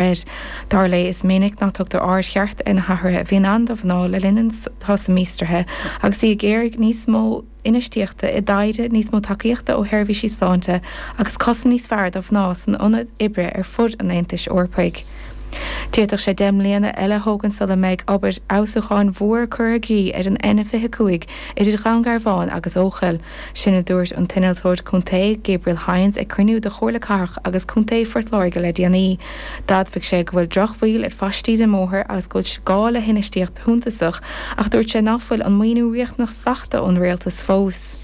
Reid. Dar léi, is minic nach dtugtar aird cheart ar na hathruithe a bhíonn ann do mhná le linn an tsosa míostraithe agus í ag iarraidh níos mó infheistíochta i dtaighde, níos mó tacaíochta ó sheirbhísí sláinte agus cosaint níos fearr do mhná san ionad oibre ar fud an Aontais Eorpaigh. D'fhéadfadh sé deich mbliana eile a thógaint sula mbeidh obair fheabhsúcháin mhór curtha i gcrích ar an N25 idir Dhún Garbhán agus Eochaill. Sin a dúirt an t-innealtóir contae, Gabriel Hynes, ag cruinniú de Chomhairle Cathrach agus Contae Phort Láirge le déanaí. D'admhaigh sé go bhfuil drochbhail ar phaistí den mbóthar agus go bhfuil gá le hinfheistíocht shuntasach ach dúirt sé nach bhfuil an maoiniú riachtanach fachta ón Rialtas fós.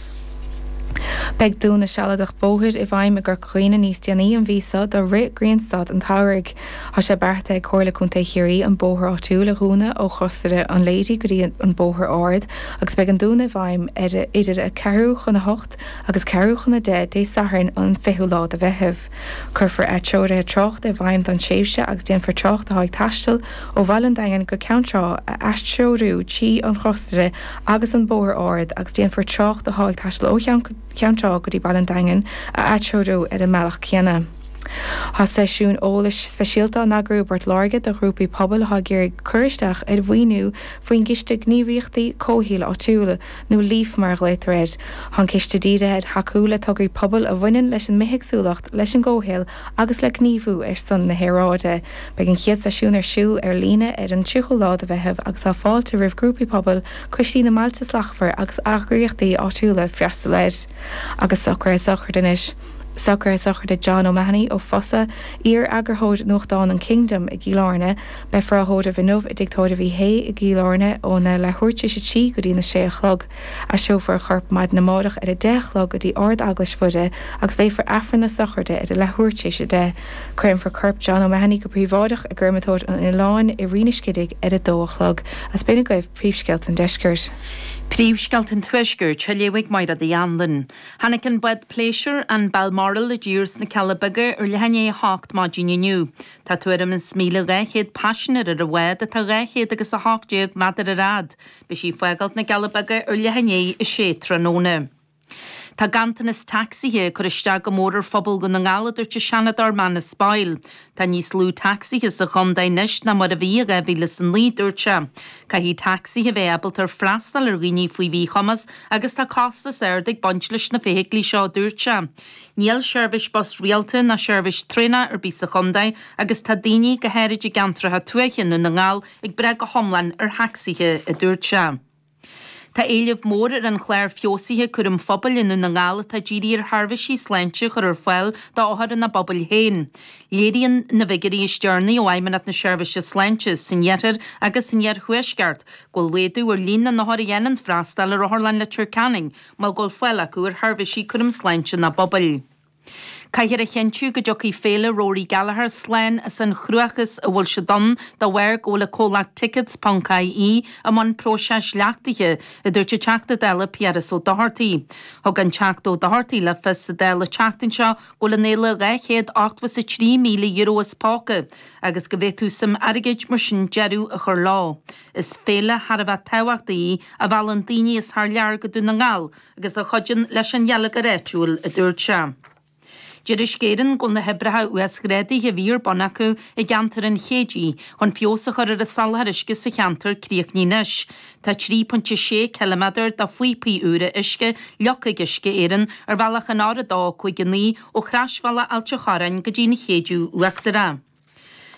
Beidh dúnadh sealadach bóthair i bhfeidhm i gCor dhaoine níos déanaí an mhí seo do rith Ghrianstad an tSamhraidh. Tá sé beartaithe ag Comhairle Contae Chiarraí an bóthar áitiúil a dhúnadh ó Chrosaire an Lady go dtí an Bóthar Ard agus beidh an dúnadh i bhfeidhm idir a ceathrú chun a hocht agus ceathrú chun a deich Dé Sathairn an 20ú lá de Mheitheamh. Cuirfear atreoruithe tráchta i bhfeidhm don tréimhse agus déanfar trácht atá ag taisteal ó Bhaile an Daingin go Ceann Trá a atreorú trí an Chrosaire agus an Bóthar Ard agus déanfar trácht atá ag taisteal ó Cheann Cheann Trá go dtí Baile an Daingin a atreorú ar an mbealach céanna. Tá seisiún eolais speisialta á eagrú i bPort Láirge do ghrúpaí pobail atá ag iarraidh cur isteach ar mhaoiniú faoin gCiste Gníomhaíochtaí Comhshaoil Áitiúil, nó Leaf mar a ghlaotar air. Tá an ciste dírithe ar thacú le tograí pobail a bhaineann leis an mbithéagsúlacht, leis an gcomhshaol agus le gníomhú ar son na haeráide. Beidh an chéad seisiún ar siúl ar líne ar an 30ú lá de Mheitheamh agus tá fáilte roimh grúpaí pobail, coistí na mBailte Slachtmhar agus eagraíochtaí áitiúla freastal air. Agus socraithe sochraide anois. Socraithe sochraide John O'Mahony ó Fosadh, iar-eagarthóir nuachtáin an Kingdom i gCill Airne. Beifear á thóireamh inniu i dTigh Tóirimh Uí Shé i gCill Airne óna leathuair tar éis a trí go dtí'n a sé a chlog. Aistreofar a chorp maidin amárach ar a deich a chlog go dtí Ard Eaglais Mhuire agus léifear Aifreann na sochraide ar a leathuair tar éis a deich. Cuirfear corp John O'Mahony go príobháideach i gCreamatóir an Oileáin i Rinn an Scidígh ar a dó a chlog. Is b'in agaibh, Príomhscéalta an Deiscirt. Príomhscéalta an Tuaiscirt, á léamh ag Máire D. Anluain. Tháinig an bád pléisiúir, an Balmoral, i dtír sna Cealla Beaga ar leath i ndiaidh a hocht maidin inniu. Tá tuairim is míle dhá chéad paisinéir ar an bhád atá dhá chéad agus a hocht déag meadar ar fhad. Beidh sí ag fágáilt na gCealla Beaga ar leath i ndiaidh a 6 tráthnóna. Tá ganntanas tacsaithe ag cur isteach go mór ar phobal Dhún na nGall, a dúirt an Seanadóir Manus Boyle. Tá níos lú tacsaithe sa chontae anois ná mar a bhí i 2009, dúirt sé. Caithfidh tacsaithe bheith ábalta ar freastal ar dhaoine faoi mhíchumas agus tá costas ard ag baint leis na feithiclí seo, a dúirt sé. Níl seirbhís bus rialta ná seirbhís traenach ar bith sa chontae agus tá daoine, go háirid i gceantracha tuaithe Dhún na nGall, ag brath go hiomlán ar thacsaithe, a dúirt sé. Tá éileamh mór ar an chlár feabhsaithe cúraim phobail i nDún na nGall atá dírithe ar sheirbhísí sláinte a chur ar fáil d'othair ina bpobail féin. Léiríonn na bhfigiúirí is deireanaí ó Fheidhmeannacht na Seirbhíse Sláinte san iarthar agus san iarthuaisceart go bhfuil laghdú ar líon na n-othar a dhéanann freastáil ar Otharlann Leitir Ceanainn mar go bhfuil fáil acu ar sheirbhísí cúraim sláinte ina bpobail. Caithfear a chinntiú go dtiocfaidh Féile Rory Gallagher slán as an chruachás a bhfuil siad ann dá bharr go bhfuil an comhlacht Tickets.ie i mbun próiseas leachtaithe, a dúirt an Teachta Dála Piaras Ó Dochartaigh. Thug an Teachta Ó Dochartaigh le fios sa Dáil an tseachtain seo go bhfuil an fhéile €283,000 as póca agus go bhféadfadh suim airgid mar sin deireadh a chur leo. Is féile thar a bheith tábhachtach í a mheallann daoine as thar lear go Dún na nGall agus a chuidíonn leis an gheilleagar áitiúil, a dúirt sé. Deir Uisce Éireann go bhfuil na hoibreacha uasghrádaithe a bhí ar bun acu i gceantar an Chéididh chun feabhas a chur ar an soláthar uisce sa cheantar críochnaithe anois. Tá 3.6 km de phíopaí úra uisce leagtha ag Uisce Éireann ar bhealach an R259 ó chrosbhealach Ailt an Chorráin go dtí an Chéideadh Uachtarach.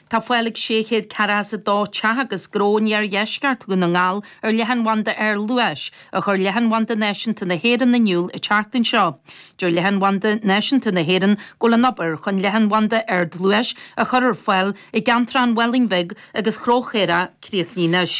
Tá fáil ag 642 teach agus gnó in iardheisceart Dhún na nGall ar leathanbhanda ardluais, a chuir Leathanbhanda Náisiúnta na hÉireann in iúl an tseachtain seo. Deir Leathanbhanda Náisiúnta na hÉireann go bhfuil an obair chun leathanbhanda ardluais a chur ar fáil i gceantar an Mhálainn Bhig agus Chill Charthaigh críochnaithe anois.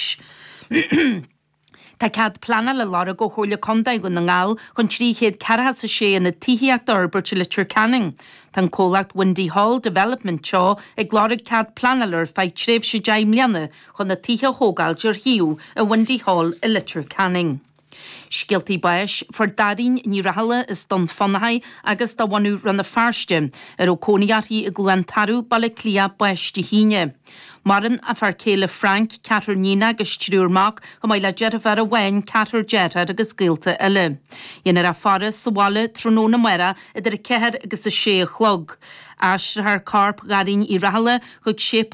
Tá cead pleanála á lorg ó Chomhairle Condae Dhún na nGall chun trí chéad ceathracha is a sé aonad tithíochta a fhorbairt i Leitir Ceanainn. Tá an comhlacht Windy Hall Development Teo ag lorg cead pleanála ar feadh tréimhse deich mbliana chun na tithe a thógáil ar shuíomh i Windy Hall i Leitir Ceanainn. Scéaltaí báis. Fuair Dairín Uí Rathaille as Dún Fionnachaidh agus de bhunadh Rann na Feirste, a raibh cónaí uirthi i gCluain Tarbh, Baile Átha Cliath, bás Dé hAoine. Maireann a fear céile Frank, ceathrar iníon agus triúr mac, chomh maith le deirféar amháin, ceathrar deartháir agus gaolta eile. Dhéanfar a faire sa bhaile tráthnóna amárach idir a ceathair agus a sé a chlog. Aistreofar corp Dhairín Uí Rathaille chuig Séipéal.